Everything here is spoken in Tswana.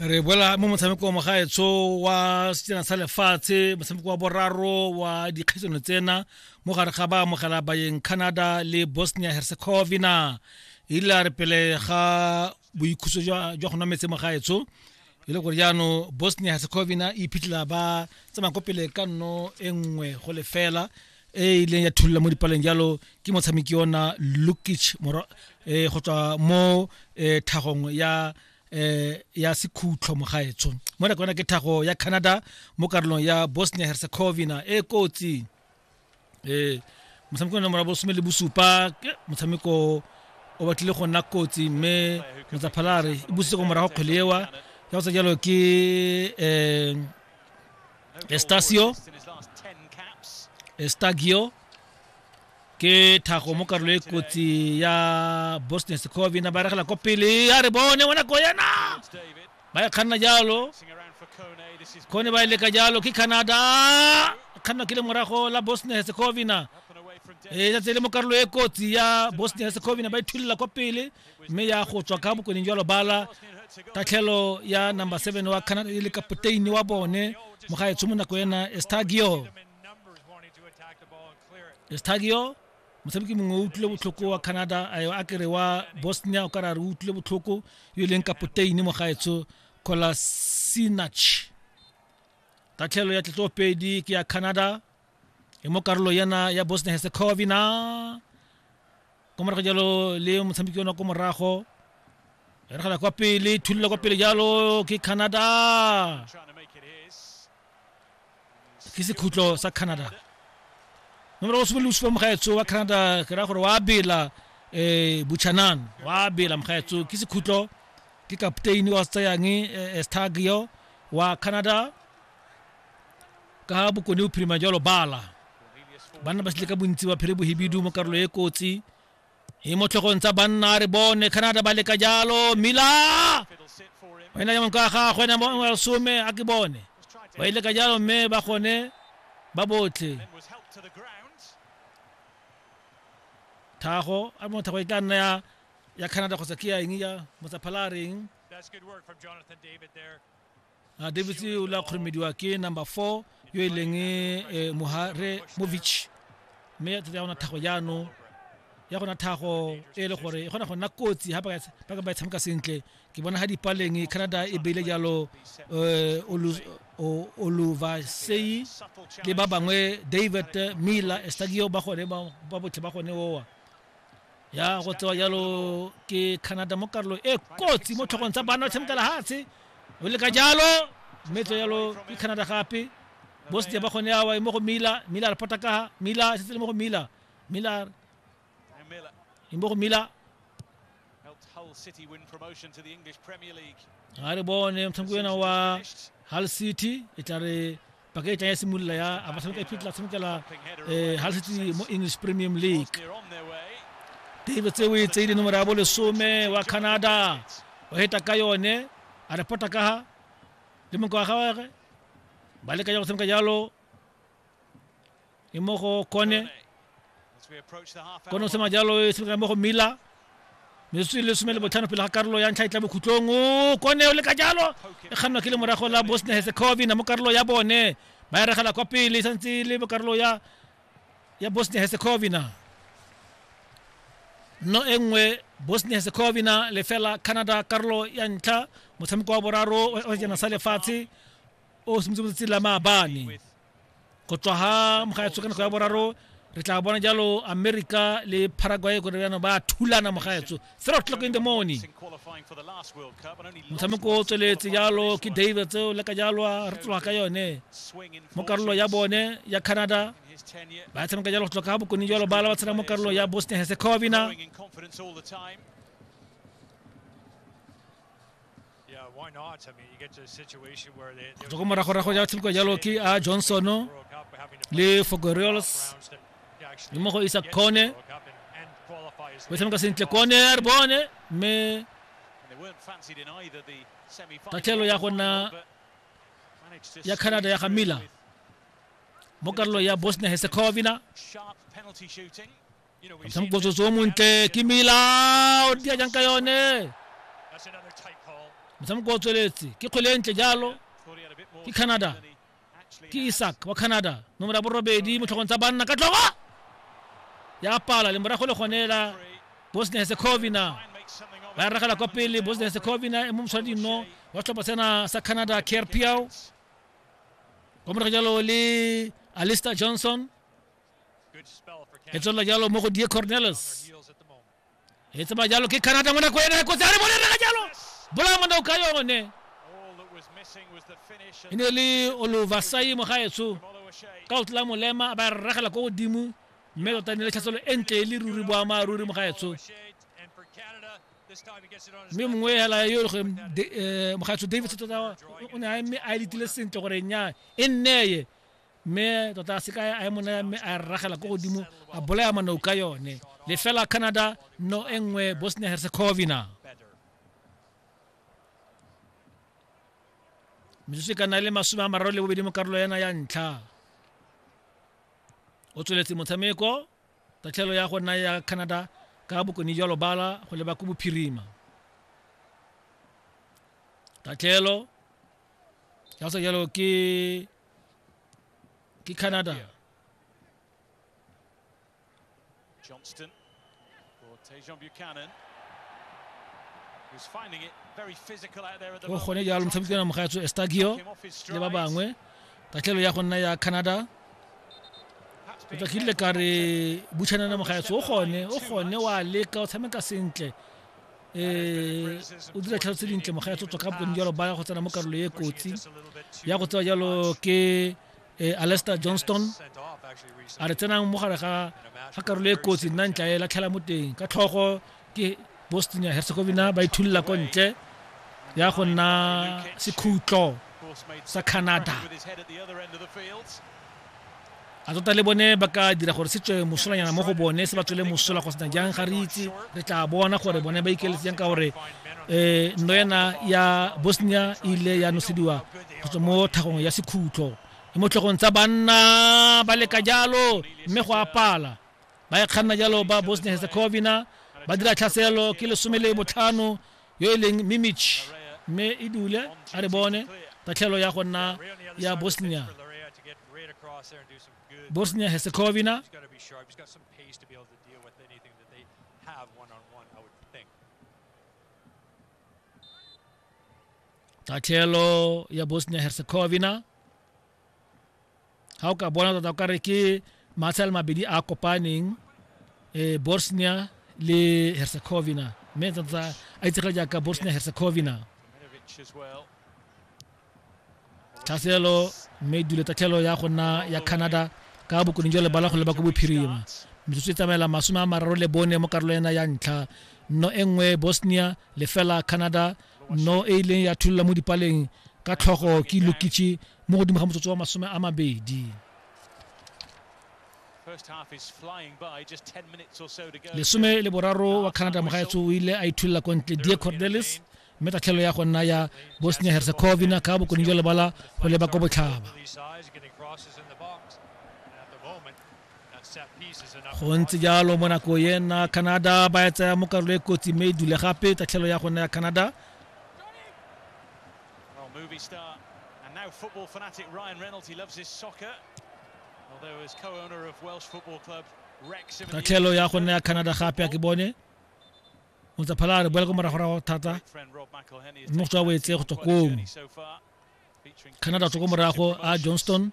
re boela mo motshameko wa mogaetsho wa setsena sa lefatshe motshameko wa boraro wa dikgaisano tsena mo gare ga ba amogela bayeng canada le bosnia herzegovina e ile a re pele ga boikhuso jwa go nwa metse mogaetsho e le gore jaanong bosnia herzegovina e iphitlhela ba tsamaya ko pele ka nno e nngwe go lefela e e ileng ya thulula mo dipaleng jalo ke motshameki ona lukic eh, go tswa mo eh, thagong ya eh ya sekhutlho mogaetsho mo re kona ke thago ya Canada mo karolong ya Bosnia Herzegovina e kotsi eh motshameko wa nomoro bosome le bosupa motshameko o batlile go nna kotsi mme motsaphalare e busitse go morago kgwele ewa ya go tsa jalo ke eh Estacio. Estagio. ke thago mo karolo e kotsi ya boston secovina ba regela ko pele a re bone wena ko yena ba e kganna jalo kone ba e leka jalo ke canada kganna ke le morago la boston herzegovina e tsatse le mo karolo e kotsi ya boston herzegovina ba ithulela kwa pele mme ya go tswa ka bokoneng jwa lobala tatlhelo ya number seven wa canada e le kapoteini wa bone mogaetsho mo nako ena estagio estagio motshameki mongwe o utlwile botlhoko wa canada a kere wa bosnia o ka ra re utlwile botlhoko yo e leng kapoteini mogaetsho colasinach tatlhelo ya tletlopedi ke ya canada e mo karolo yana ya bosnia herzegovina ko morago jalo le motshameki ona ko morago re gala kwa pele thulula kwa pele jalo ke canada ke sekhutlo sa canada nomoro o simolola supa mogaetso wa canada ke raya gore wa bela um buchanan wa bela mogaetso ke sekhutlo ke kapteini wa se tsayang eh, eh, stagio wa canada ka bokone o phirima jalo bala banna ba setle ka bontsi ba phere bohibidu mo karolo e kotsi e mo tlhogong tsa banna re bone canada ba leka jalo mila o ena jaanong ka gagwe ena mo- wa some a ke bone ba ile ka jalo mme ba gone ba botlhe thago a mo thago e tla nna ya ya canada kgotsa ke ya eng ya motsaphala a reng a davis o la kgoromediwa ke number four yo e leng eh, mohare movich mme ya tsatsi ya gona thago jaanong ya gona thago e le gore e kgona go nna kotsi ga ba ka ba e tshameka sentle ke bona ga dipaleng canada e beile jalo eh, oluvasei le ba bangwe david miller estagio ba gone ba botlhe ba gone owa ya go tsewa jalo ke canada mo karolo e kotsi mo tlhogong tsa bana ba tshameka lehatshe o leka jalo mme tso jalo ke canada gape bosete ba gone awa e mo go mila mila re phota kaga mila setse le mo go mila mila e mo go mila ga re bone motshameko ena wa hull city e tla re paka e tlang ya simolola ya abatlhanoka e phitla tshamekela um ga setse mo english premium league tebe tse o e tseile nomoro ya bo lesome wa canada o heta ka yone a repota ka ga le monka wa gagwe ba leka ya go tshameka jalo e mo go kone kone o se majalo e semekana mo go mila metsotso e le some le botlhano pele ga karolo ya ntlha e tla bokhutlong o kone o le ka jalo e kgannwa ke le morago la bosnia herzegovina mo karolo ya bone ba e regela kwa pele e santse e le mo karolo ya ya bosnia herzegovina no e nngwe bosnia herzegovina lefela canada karolo ya ntlha motshameko wa boraro wa sejana sa lefatshe o simotse motsatsi la maabane go tswa ga mogaetsho ka nako ya boraro re tla bona jalo america le paraguay gore jaanong ba thulana mogaetsho zero o'clock in the morning motshameko o tsweletse jalo ke david tseo le ka jalo re tloga ka yone mo karolo ya bone ya canada ba tshameka jalo go tloka ga bokone jalo bala ba tshela mo karolo ya bosnia herzegovina go tswa moragorago ja tshameka jalo ke a ah, johnson le fogoreals le mo go isa kone o tshameka sentle kone a re bone mme tatlhelo ya go nna ya canada ya ga miller mo karolo ya bosnia herzegovina mosamokotsoso o montle ke mila o dia jang ka yone mosamoko o tsweletse ke kgwele e ntle jalo ke canada ke isaac wa canada nomoro ya borobedi motlhogong tsa banna ka tlogo ya pala le morago le gone la bosnia herzegovina ba ragela kwa pele bosnia herzegovina e mo moswadi nno wa setlhopha sena sa canada care piao kwa morago jalo le alister johnson e tswelela jalo mo go die cornelis e tsamaya jalo ke canada mo nako ene kotsi a re bone rega jalo bolaya monao ka yone e ne le oluvasai mogaetsho ka o tla molema a ba regela ko godimo mme tota e ne le tlhatselo e ntle e le ruri boamaaruri mogaetsho mme mongwe hela yo le gore eh, mogaetsho davis tota o ne a eme a letile sentle gore nya e nneye mme tota a seka a e monaya mme a rragela ko godimo a bolaya manou ka yone le fela canada no e nngwe bosnia herzegovina metsotso e ka nna le masome a mararo le bobedi mo karolo yana ya ntlha o tsweletse motshameko tatlhelo ya go nna ya canada ka bokone jwa lobala go leba ko bophirima tatlhelo ya sa jalo ke ke canada Johnston or Tejan Buchanan go gone jalo motshameki ona mogatso estagio le ba bangwe tatlhelo ya go nna ya canada o tla kile ka re buchanana mogatso o gone o gone wa leka o tshameka sentle um o dira tlhalo tse dintle moga ya tsotswa ka bokone jalo ba ya go tsena mo karolo e kotsi ya go tsewa jalo ke um alester johnston a re tsenang mo gare ga karolo e kotsi nna ntla e latlhela mo teng ka tlhogo ke boston ya herzegovina ba ithullela ko ntle ya go nna sekhutlo sa canada A tota le bone ba ka dira gore se tswe mosolanyana mo go bone se ba tswele mosola go sena jang ga re itse re tla bona gore bone ba ikeletse jang ka gore um nno ena ya bosnia e ile ya nosediwa go tswa mo thagong ya sekhutlo e mo tlhogong tsa banna ba leka jalo mme go apala ba e kganna jalo ba bosnia herzegovina ba dira tlhaselo ke lesome le botlhano yo e leng Mimic mme e dule a re bone tatlhelo ya go nna ya Bosnia Bosnia Herzegovina tatlhelo ya Bosnia Herzegovina ga o ka bona tota o kare ke matshale mabedi a kopaneng um bosnia le herzegovina mme tota a itsege jaaka bosnia herzegovina tlhaselo mme dule tatlhelo ya go nna ya canada ka bokoning jwa lebala go leba ko bophirima metsotso e tsamaela masome a mararo le bone mo karolo ena ya ntlha nno e nngwe bosnia lefela canada no e ileng ya thulula mo dipaleng ka tlhogo ke lukichi mo godimo ga motsotso wa masome a mabedi lesome le boraro wa canada mogaetso o ile a ithulula ko ntle die cordelis mme tatlhelo ya go nna ya bosnia herzegovina ka bokone jwa lebala go leba ko botlhaba go ntse jalo mo nako ena canada ba e tsaya mo karolo e kotsi mme e dule gape tatlhelo ya gone ya canada movie star and now football fanatic Ryan Reynolds. He loves his soccer, although as co-owner of Welsh football club Wrexham. Tatlhelo ya gone ya Canada gape a ke bone. Motsaphala a re boela ko moragorago thata. Mme go tswa boetse go tswa kong. Canada tswa ko morago a Johnston.